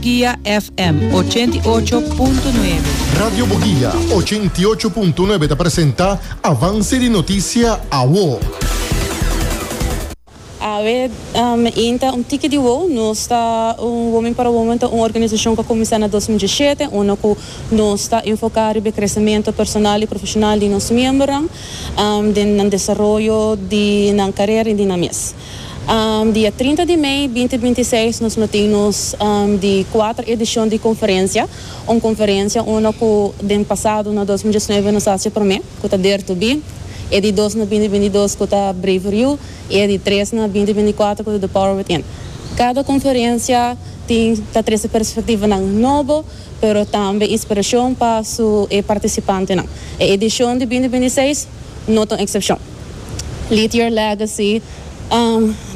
Bugia FM ochenta i ocho punto nuebe. Radio Bugia ochenta i ocho punto nuebe ta presenta Avance di Noticia Awo. Awe inta un tiki di wou nos ta un Women para Women ta un organisacion cu a cuminsa na dos mil diesisiete unda cu nos ta enfoca riba e crecemento personal y profesional di nos miembernan den nan desaroyo di nan carera y di nan mes. Dia trinta di mei binti binti seis nos lo tin nos di kuater edishon di konferensia, un konferensia unda ku den pasado na dos mil diesnuebe nos hasi e promé, ku ta Dare to Be, e di dos na binti binti dos ku ta Braver You i e di tres na binti binti kuater ku ta The Power Within. Kada konferensia tin ta trese perspektivanan nobo, pero tambe inspirashon pa su e partisipantenan. E edishon di binti binti seis no ta un eksepshon. Lead Your Legacy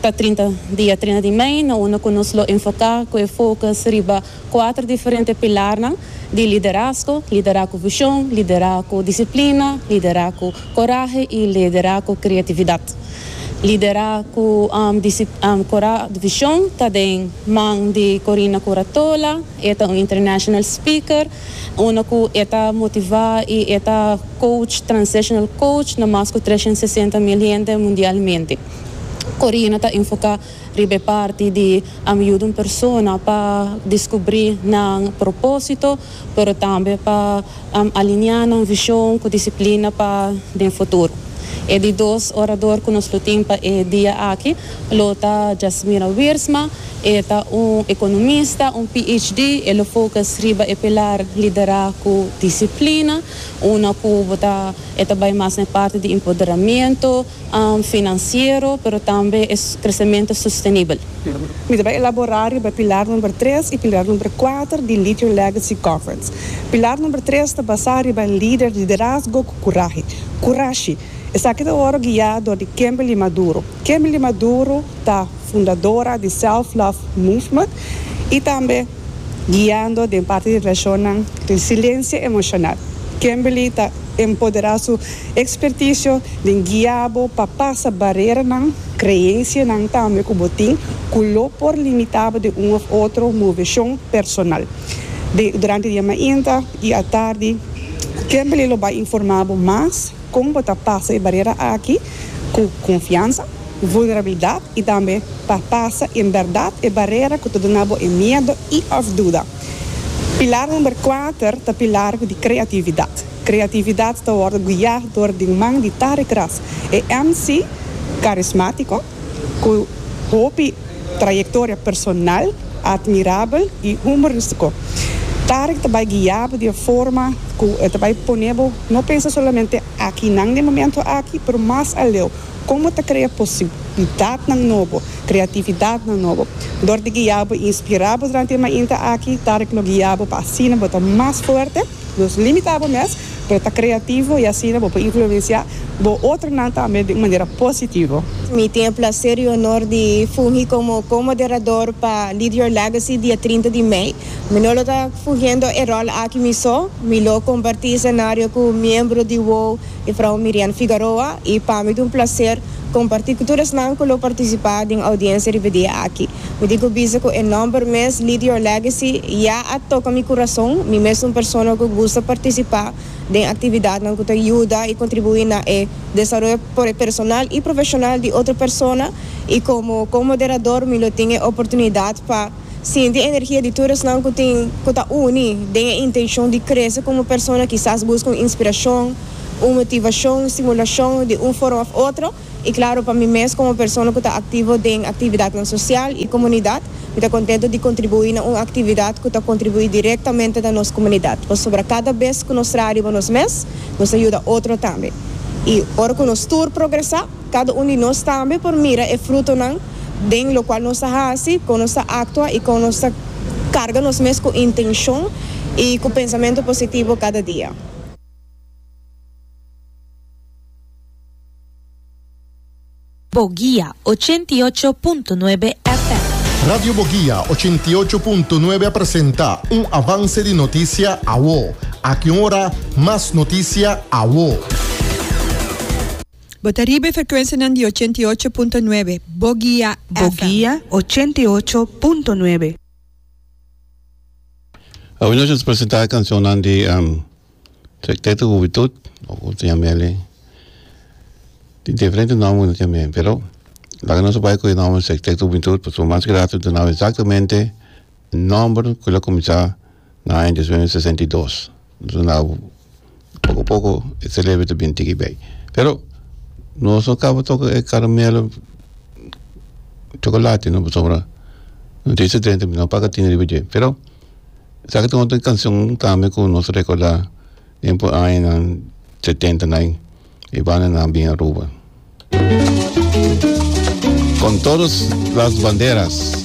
ta trinta dia trina di mei na unda ku nos lo enfoká ku e fokus riba kuater diferente pilarnan di liderazgo, liderá ku vishon, liderá ku disiplina, liderá ku korahe i liderá ku kreatividat. Liderá ku vishon ta den man di Corina Curatola, e ta un international speaker Unda ku e ta motivá i e ta coach, transitional coach, na mas ku tres shen sesenta mil hende mundialmente. Corina ta enfoká riba e parti di a yuda un persona pa diskubrí nan propósito, pero tambe pa aliniá nan vishon ku disiplina pa den futuro. E di dos orador ku nos lo tin pa e dia aki lo ta Jasmira Wiersma, E ta un economista, un PhD, e lo focus riba e pilar Liderá cu Disciplina, una cu bo ta e ta bay mas na e parti di empoderamento financiero, pero tambe e crecemento sostenibel. Mi ta bay elaborá riba e pilar number tres y pilar number cuater di Lead Your Legacy Conference. Pilar number tres ta basá riba e lider Liderazgo cu Curahe, Curashi. Esaki ta worde guiá dor di Kimberly Maduro. Kimberly Maduro ta. fundadora di Self Love Movement y tambe guiando den parti di relacionnan resiliencia emocional. Kimberly ta empodera su experticio den guia bo pa pasa bareranan, creencianan tambe cu bo tin cu lo por limita bo den un of otro movecion personal. Durante di e mainta y atardi Kimberly lo bay informa bo mas. Kon bo ta pasa e bariera aki ku konfiansa, vulnerabilidat i tambe pa pasa en bèrdat e barera ku ta duna bo e miedu i òf duda? Pilar number kuater ta pilar di kreatividat. Kreatividat ta wòrdu guiá dor di un man di Tarek Ras, e MC karismátiko, Ku hopi trayektoria personal atmirabel i humoristiko, Tarek ta bai guiá bo di e forma ku e ta bai pone bo no pensa solamente aki nan den momentu aki, pero mas aleu komo ta krea posibilidadnan nobo, kreatividadnan nobo. Dor di guiá bo i inspirá bo durante e mainta aki, Tarek lo guiá bo pa asina bo ta mas fuerte. Nos limita bo mes, pero ta kreativo i asina bo por influensiá bo otronan tambe di un manera positivo. Mi tin e plaser i onor di fungi komo ko-moderador pa Lead Your Legacy dia trinta di mei. Mi no lo ta fungiendo e ròl aki mi so, mi lo kompartí esenario ku miembro di wou E frou Mirian Figaroa y pa mi ta un placer comparti cu tur esnan cu lo participa den audiencia riba dia aki. Mi tin cu bisa cu e nomber mes Lead Your Legacy ya a toca mi curazon. Mi mes ta un persona cu gusta participa den actividadnan cu ta yuda y contribui na e desaroyo personal y profesional di otro persona y como co-moderador mi lo tin e oportunidad pa. Sinti energia di tur esnan ku tin ku ta uni den e intenshon di krese komo persona kisas buska un inspirashon, un motivashon, stimulashon di un forma òf otro i klaro pa mi mes komo persona ku ta aktivo den aktividatnan sosial i komunidat mi ta kontentu di kontribuí na un aktividat ku ta kontribuí direktamente na nos komunidat pasobra kada bes ku nos traha riba nos mes nos ta yuda otro tambe i ora ku nos tur progresá. Cada un di nos tambe por mira e frutonan den locual nos ta haci, con nos ta actua y con nos ta carga nos mes cu intencion y cu pensamento positivo cada dia. Boguia, ochenta i ocho punto nuebe FM. Radio Boguia, ochenta i ocho punto nuebe a presenta un avance di noticia awo. Aki un ora mas noticia awo. Bo ta riba e frekuensianan di ochenta i ocho punto nuebe Bogia FM. Bogia ochenta i ocho punto nuebe. Awe nos nos presenta cancionnan di um, Secteto Juventud, o como se llama ele. Tin diferente nombre no tiene, pero laga nos bay con el nombre Secteto Juventud, pues lo más grato de nou exactamente Nomber cu lo cuminsa na aña dies mil novecientos sesenta y dos nos a na poco a poco e celebra ta bini tiki bay pero nos no caba toca e caramelo chocolate no pasobra no tin esey drenta no paca tin riba dje pero sa ca tin otro cancion tambe cu nos recorda den por añanan setenta na ain e bandanan bin Aruba con todos las banderas.